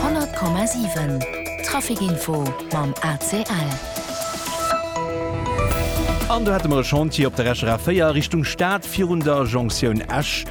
100,7 Traficinfo mam ACL. An do hätte mer e Chantier op der Esch RA4 Richtung Stad virun der Jonktioun Esch.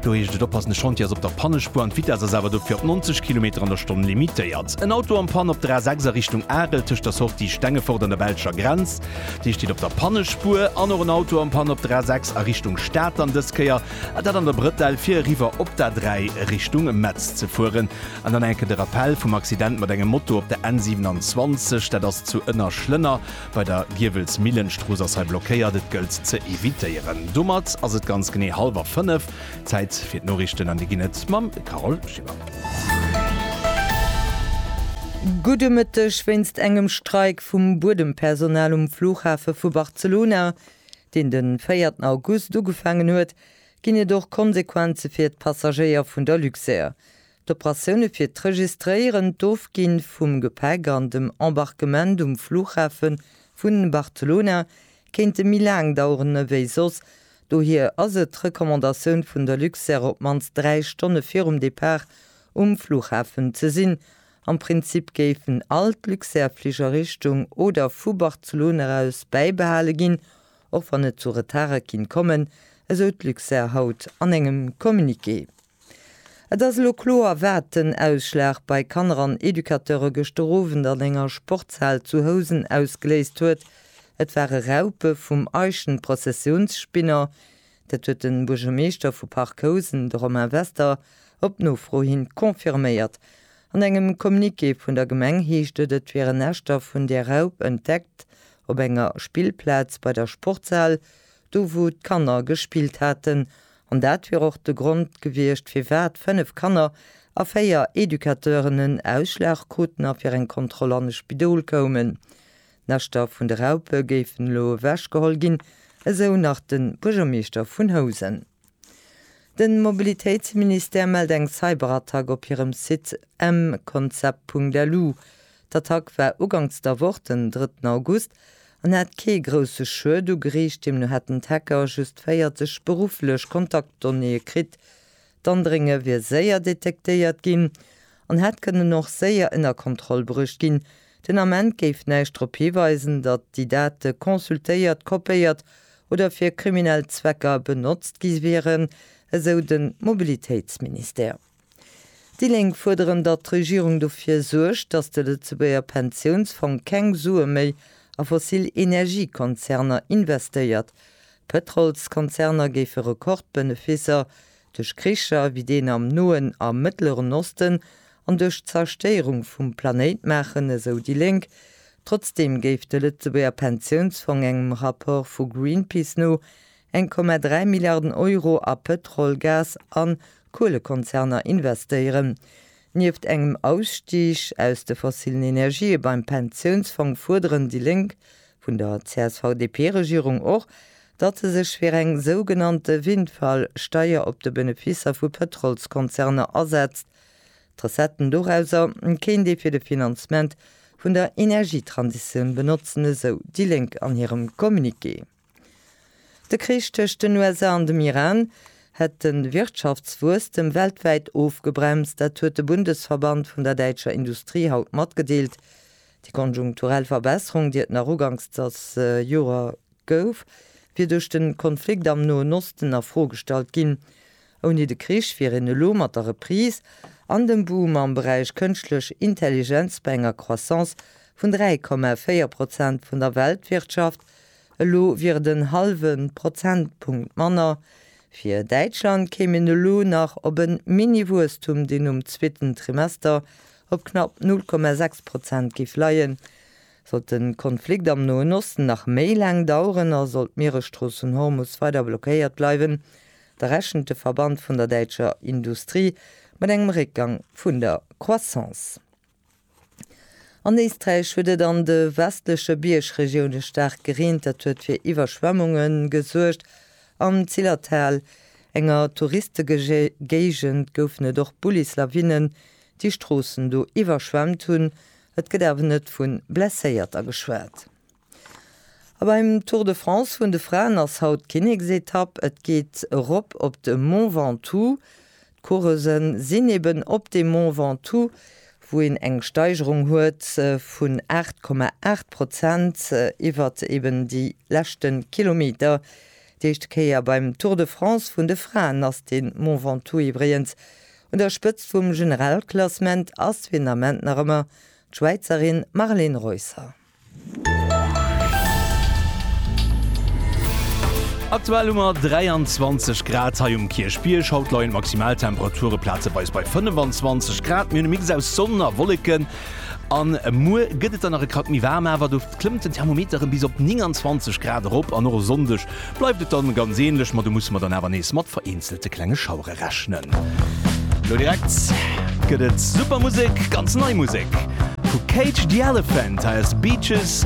Do heescht et oppassen, de Chantier ass op der Pannespuer an d'Vitess ass awer dofir op 90 Kilometer an der Stonn limitéiert. En Auto am Pann op der A6 a Richtung Arel tëscht der Sortie Stengefort an der belscher Grenz. Dee steet op der Pannespuer. An och en Auto am Pann op der A6 a Richtung Stad, an dës Kéier A dat an der Brëtell, fir eriwwer op d'A3 Richtung Metz ze fueren. An dann enke de Rappell vum Accident mat engem Moto op der N27. Dat ass zu Ënnerschlënner bei der Giewelsmillen. D'Strooss ass hei blockéiert, et gëllt ze evitéieren. Domat ass et ganz genee hallwer fënnef. Zäit fir d'Noriichten an déi ginn et mam Carole Schimmer. Gudde Mëtteg, Wéinst engem Streik vum Buedempersonal um Flughafe vu Barcelona deen de véierten August ugefaangen huet, ginn et och Konsequenze fir d'Passagéier vun der Luxair. D'Operatioune fir d'Registréieren, d'Ofginn vum Gepäck an dem Embarquement um Fluchhafe vun Barcelona kéinte méi laang daueren ewéi soss, dohier ass et d'Recommandatioun vun der Luxair op d'mannst 3 Stonne virum Depart um Fluchhafen ze sinn Am Prinzip géifen all d'Luxair Fliger Richtung oder vu Barcelone eraus bäibehale ginn, och wann et zu Retarde kinnt kommen, esou d'Luxair haut an engem Communiqué. Et ass elo kloer wat den Ausschlag bei Kanner an Educateure gëschter Owend an enger Sportshal zu Housen ausgeléist huet. Et ware Raupe vum Eichenprozessionsspinner, Dat huet de Buergermeeschter vu Parc Housen, de Romain Wester, op Nofro hin confirméiert. An engem Communiqué vun der Gemeng heescht et, et wieren Näschter vun där Raup entdeckt op enger Spillplaz bei der Sportshal, do wou d'Kanner gespillt haten. An dat wier och de Grond gewiescht, firwat 5 Kanner a 4 Educateuren en Ausschlag kruten a fir eng Kontroll an e Spidol koumen. D'Näschter vun de Raupe géifen elo ewech geholl ginn, esou nach de Buergermeeschter vun Housen. De Mobilitéitsministère mellt eng Cyberattack op hirem Site mconcept.lu. D'Attack war uganks der Woch, den drëtten August, an hat kee grousse Schued ugeriicht. Deemno hätten d'Hacker just 40 berufflech Kontaktdonnéeë kritt, D'Andrénge wier séier detektéiert ginn an hätt kënnen och séier ënner Kontroll bruecht ginn. Den Ament géif näischt drop hiweisen, datt déi Date consultéiert, kopéiert oder fir kriminell Zwecker benotzt gi wieren, esou de Mobilitéitsministère. Déi Lénk fuerderen, datt d'Regierung dofir suergt, datt de Lëtzebuerger Pensiounsfong keng Sue méi a fossil Energiekonzerner investéiert. Pëtrolskonzerner géife Rekordbeneficer duerch Kricher wéi deen am Noen a Mëttleren Osten an duerch d'Zerstéierung vum Planéit maachen, esou déi Lénk. Trotzdeem géif de Lëtzebuerger Pensiounsfong engem Rapport vu Greenpeace no 1,3 Milliarden Euro a Pëtrol-, Gas a Kuelekonzerner investéieren. Nieft engem Ausstig aus de fossilen Energië beim Pensiounsfong fuerderen déi Lénk vun der CSV-DP-Regierung och, datt se sech fir eng sougenannte Windfall-Steier op de Beneficer vu Pëtrolskonzerner asetzt. D'Recetten dorauser kéint ee fir de Finanzement vun der Energietransitioun benotzen, esou déi Lénk an hirem Communiqué. De Krich tëscht den USA an dem Iran hätt de Wirtschaftswuesstem weltwäit ofgebremst. Dat huet de Bundesverband vun der däitscher Industrie haut matgedeelt. Déi konjunkturell Verbesserung, déi et nach uganks des Joer gouf, wier duerch de Konflikt am Noen Osten a Fro gestallt ginn. Ouni de Krich wier een elo mat der Reprise an dem Boom am Beräich Kënschtlech Intelligenz bei enger Croissance vun 3,4 Prozent vun der Weltwirtschaft Elo wier et en hallwe Prozentpunkt manner. Fir Däitschland kéim een elo nach op e Mini-Wuesstum, deen um zweeten Trimester op knapp 0,6 Prozent géif leien. Sollt de Konflikt am Noen Osten nach méi laang daueren a sollt d'Mieresstrooss vun Hormus weider blockéiert bleiwen, da rechent de Verband vun der däitscher Industrie mat engem Réckgang vun der Croissance. An Éisträich huet et an de westleche Biergregioune staark gereent. Dat huet fir Iwwerschwemmunge gesuergt. Am Zillertal, enger Touristegegéigend, goufen et och Bullislawinnen, déi Stroossen do iwwerschwemmt hunn. Et gëtt awer net vu Blesséierter geschwat. A beim Tour de France vun de Fraen ass haut d'Kinneksetapp. Et geet erop op de Mont Ventoux. D'Coureuse sinn eben op dem Mont Ventoux, wou een eng Steigerung huet vun 8,8 Prozent iwwer eben déi leschte Kilometer. Déi éischt Kéier beim Tour de France vun de Fraen ass de Mont Ventoux iwwregens un der Spëtzt vum Generalklassement, ass fir den Ament nach ëmmer d'Schwäizerin Marlen Reusser. Aktuell hu mer 23 Grad hei um Kierchbierg. Haut leien d'Maximaltemperature plazeweis bei 25 Grad. Mir hunn e Mix aus Sonn a Wolleken. An muer gëtt et dann nach e Krack méi waarm, awer do klëmmt den Thermometer erëm bis op 29 Grad erop. An och e Sonndeg bleift et dann ganz änlech, ma do musse mer dann awer nees mat vereenzelte klenge Schauere rechnen. rechnen. Lo direkt gëtt et super Musek, ganz nei Musek vu Cage the Elephant, hei ass Beaches